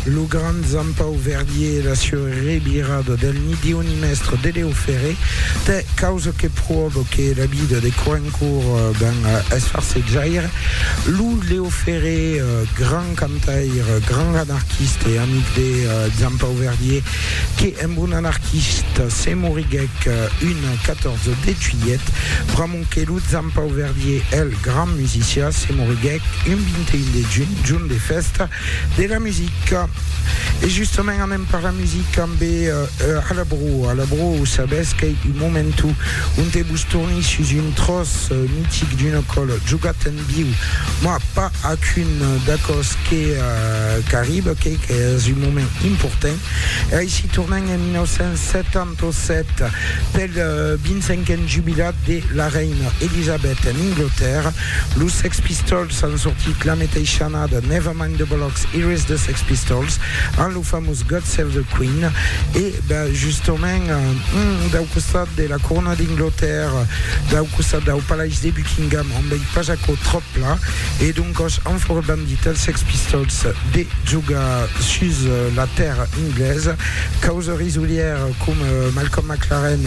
Lo grand Zampau Verdier e la sua revirada del Nidioni Mestre de Leo Ferré t'es causa que proba que la vida de Coencourt ben es farsejaire. Lo Leo Ferré, grand cantaire, grand anarquiste e amic de Zampau Verdier, que amb un anarquiste se moriguèc un 14 de juilhet, pr'amor Sonque lo Zan Pau Verdier, eth gran musician, se moriguèc un 21 de junh, jorn de fèsta de la musica. E justament anem per la musica ambe A la Broa. A la Broa, o sabètz qu'ei un momento onte vos torni sus un tròç mitic d'un acòl jogat en viu, mah, pas ac un d'aquò's que qu'arriba, qu'ei qu'es un moment important. E aicí tornem en 1970. Tosset pel 25n jubilat de la reina Elisabet en Anglatèrra, los Sex Pistols an sortit la meteisha annada Never Mind the Bollocks, Here Is the Sex Pistols amb lo famós God Save the Queen e justament dau costat de la corona d'Anglatèrra, dau costat dau palais de Buckingham on vei pas aquò tròp pla e doncòs an fòra bandit els Sex Pistols de jogar sus la tèrra anglesa causa Musolièrs coma Malcolm McLaren,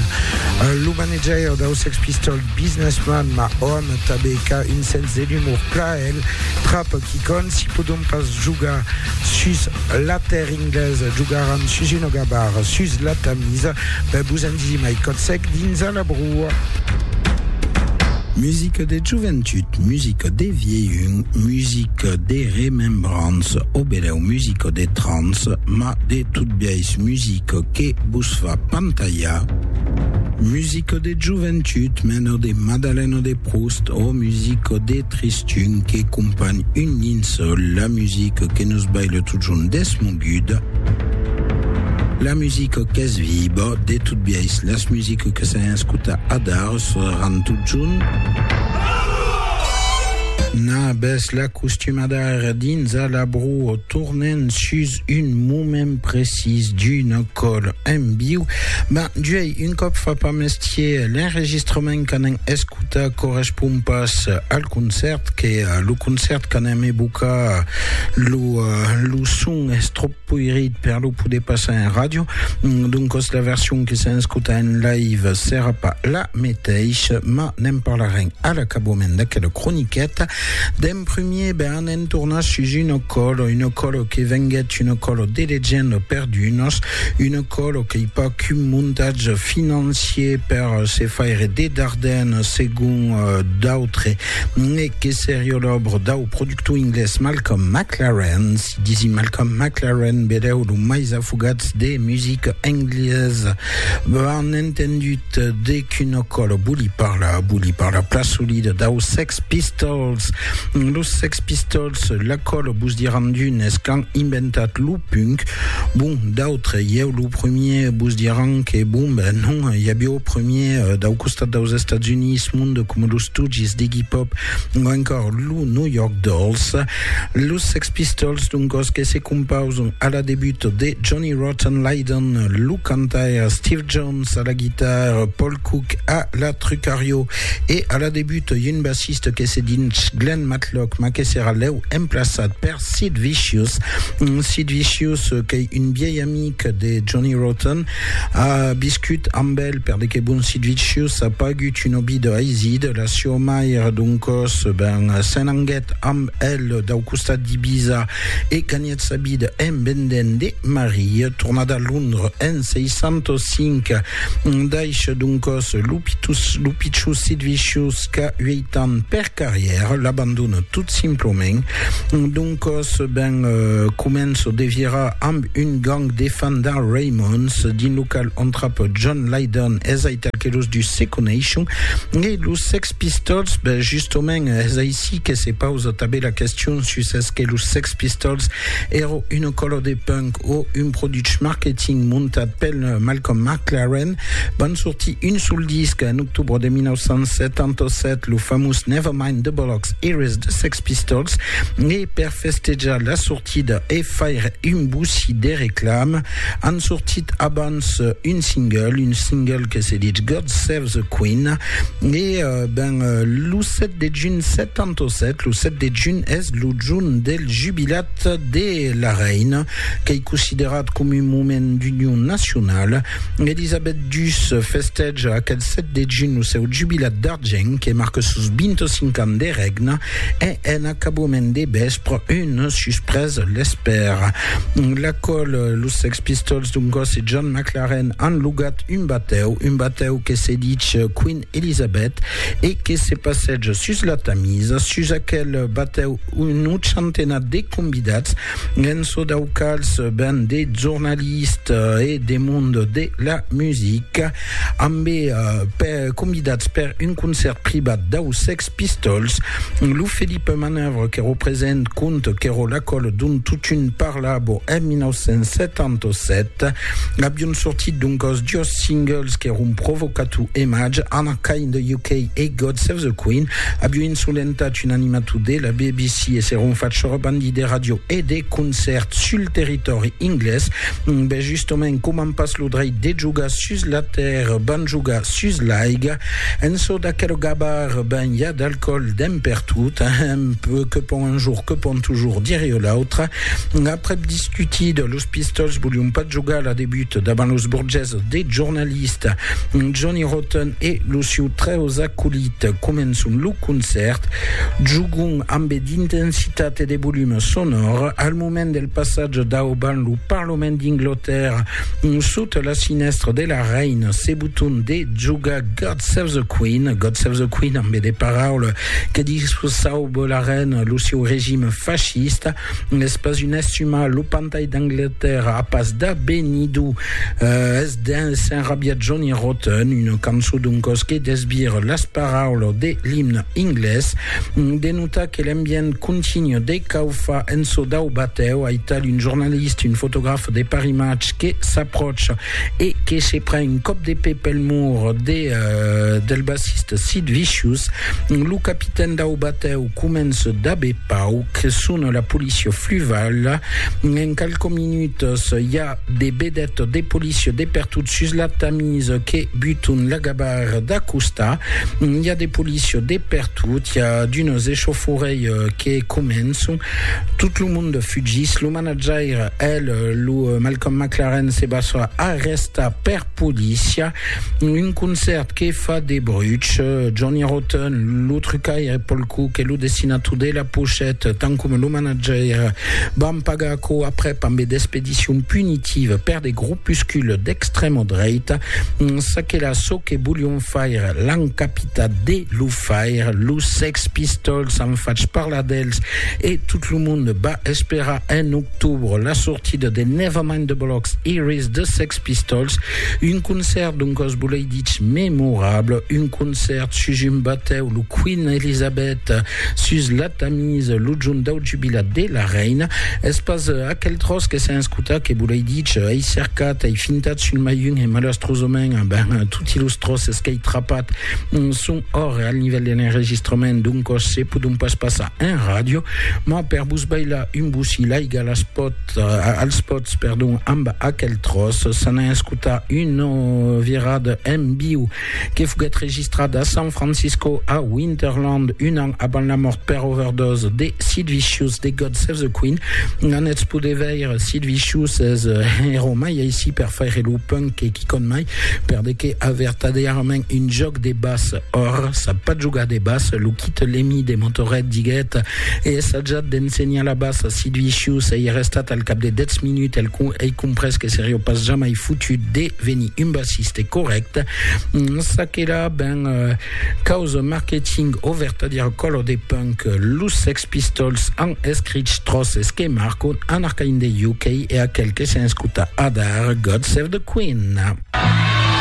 lo manajaire dau Sex Pistols Business Man, ma òm tanben qu'a un sens de l'umor plaèl trap quicònt, si podon pas jogar sus la tèrra inglesa, jogaràn sus una gabara sus la Tamisa, ben vos en disi mai còt sec dins a la broa. Musica de joventut, musica de vielhun, musica de remembrança, o benèu musica de trance, ma de Tot biais musica que vos fa pantalhar, musica de joventut mena de Madalena de Proust ò musica de tristun que companh un linçòl, la musica que nos baila totjorn desmoguda, la musica qu'es viva, de tot biais las musica que s'an escotat adar seràn totjorn. Nabes la costumada ara dins a la broa tornent sus un moment precís d'una còl en viu, ben juei un còp fa pas mestier, l'enregistrament qu'anem escutar correspond pas al concèrt, que lo concèrt qu'anem evocar lo, lo son es tròp poirit per lo poder passar en ràdio, doncas la version que s'en escuta en live serà pas la meteissa, mas ne'n parlarem a l'acabament d'aquela croniqueta. D'en primier, be an entornat sus un ocòlo, un ocòlo que venguèt un ocòlo de legenda per d'unos, un ocòlo qu'ei pas qu'un montatge financier per se faire de dardèn segon d'autres, e que seriá l'òbra dau productor inglés Malcolm McLaren, si disi Malcolm McLaren, be deu lo mais afogats de musica englesa. An entendut de. Qu'una còla voli parlar, voli parlar plan solida dau Sex Pistols. Los Sex Pistols, la còla vos diràn d'unes qu'an inventat lo punk, bon, d'autres, ieu lo premier, vos diràn que bon, ben non, i aviá au premier dau costat daus Estats Units monde coma los Stooges d'Iggy Pop o encòr lo New York Dolls. Los Sex Pistols, doncòs, que se compausan a la debut de Johnny Rotten Lydon, lo cantaire Steve Jones, Jones a la guitare, Paul Cook a la trucario e a la debut un bassiste que se dins Glenn Matlock ma que serà lèu emplaçat per Sid Vicious. Sid Vicious qu'ei un viei amic de Johnny Rotten, a viscut amb el per de que bon Sid Vicious a pagut un òbi de Haizid, la sieu mair doncòs ben s'en anguèt amb el dau costat d'Ibiza e ganhèt Fèt sa vida en vendent de marie. Tornat a Londres en 605, daish d'un còs lo pichus sit vicius qu'a ueit ans per carrièr, l'abandona tot simplament. D'un còs ben començo de virar amb un gang de fandar Raymonds dins lo qual entrapa John Lydon, es aital que los dus se coneishon, e los Sex Pistols. Ben, justament, es aicí que se pausa tanben la question sus es que los Sex Pistols èra una còla de punk o un produch marketing montat pel Malcolm McLaren. Van sortir un sol disc en octobre de 1977, lo famós Never Mind the Bollocks Eres de Sex Pistols, e per festejar la sortida e faire un boussi de reclama, an sortit abans un single, un single que se ditz God Save the Queen, e ben lo 7 de junh 77, lo 7 de junh es Lo jorn del jubilat de la reina, qu'ei considerat com un moment d'union nacionala, Elisabet dus festeja aquel 7 de junh lo seu jubilat d'argent que marca sos 25 ans de règna e en acabament de vèspre una suspresa l'espèra. L'acòl, los Sex Pistols d'un còs e John McLaren an logat un batèu, un batèu que se dich Queen Elisabet, e que se passèj sus la Tamisa, sus aquel batèu unu centenat de convidats, en çò dau quals ben de jornalistes e de mond de la musica, ambé convidats per un concèrt privat dau Sex Pistols, lo Philippe Manœuvre qu'èro present quand qu'èro l'acòl dont totun parlavo en 1977, avion sortit doncòs dos singles qu'èron Provocato e Maj, Anna Kay in the UK e God Save the Queen, avion insolentat un animator de la BBC e s'èron fach sorbandi de ràdio e de concèrts sul territòri inglés. Ben justement, coman pas lo dreit de jogar sus la tèrra, van jogar sus l'aiga. En çò d'aquerogabar ben i a d'alcoòl dempertot, amb que pon un jour, que pon toujours dire o l'autre. Aprèp discutida, los Pistols volion pas jogar la debut davant los burgés de jornalista Johnny Rotten e lo siu trèus acolit. Començon lo concèrt, jogon ambe d'intensitat e de volum sonor. Al moment del passatge dauban lo Parlament d'Inglotèrra, sota la sinèstra de la Reina, se boton de Joga God Save the Queen, God Save the Queen, amb de paraules que discursau bo la reina, lo seu regime fascista, es pas un estimar lo pantai d'Angleterra, a pas da benidu, eh, es d'un s'enrabiat Johnny Rotten, una cançó d'un cos que desbir las paraules de l'imne inglés, de notar que l'ambient continu de caufa en çò dau batèu, aital un jornalista, un fotograf de Paris Match que s'aprocha e que se pren un còp de pè pel mur de del bassista Sid Vicious, lo capitèn dau batèu comença dab e pauc, sona la polícia fluvala, en qualques minutas i a de vedètas de polícia de pertot sus la Tamis que buton la gabarra d'acostar, i a de polícia de pertot, i a d'unes echaufòrèi que començon, tot lo monde fugís, lo Manajaire, el, lo Malcolm McLaren se basa a resta per polícia. Un concèrt que fa de bruch. Johnny Rotten, lo trucaire Paul Cook e lo dessinator de la pochette, tant coma lo manajaire, van pagar aquò aprèp ambe d'expedicion punitiva per de gropuscules d'extrèma dreita. Çaquelà çò que volion faire, l'an capitat de lo faire. Los Sex Pistols an fach parlar d'els e tot lo monde va Espèra en octobre la sortida de Nevermind the Bollocks Iris de Sex Pistols, un concèrt d'un còs bolei dich memorable, un concèrt sus un batèu, lo Queen Elizabeth, sus la Tamise, lo jorn dau jubilat de la reina. Es pas aquel tròç que s'a escotat que bolei dich, ei cercat, ei fintat sul mai un e malastrosament, ben, toti los tròces qu'ei trapat son Ora, al nivèl de l'enregistrament d'un còs se pòdon pas passar en ràdio, mas per vos bailar un bocí l'aiga las pòt, als pòts, perdon, amb aquel tròç. S'an a escotar una virada en viu que foguèt registrada a San Francisco, a Winterland, un an avant la mòrt per overdose de Sid Vicious de God Save the Queen. N'anètz poder veire Sid Vicious es hèro mai aicí per faire lo punk que quicòm mai, per de que a vertadièrament un jòc de bas or sap pas jogar de bas lo quite l'emi de motoret diguet e essajat d'ensenhar la bas si duixiu s'ei restat al cap de dètz minut el con ei comprès que serió pas jamai fotut de venir un bassiste correct ça que là ben causa marketing o vertadier color de punk los sex pistols an escrich tros es que marcon an arcain de UK e aquel que s'enscuta adar God save the Queen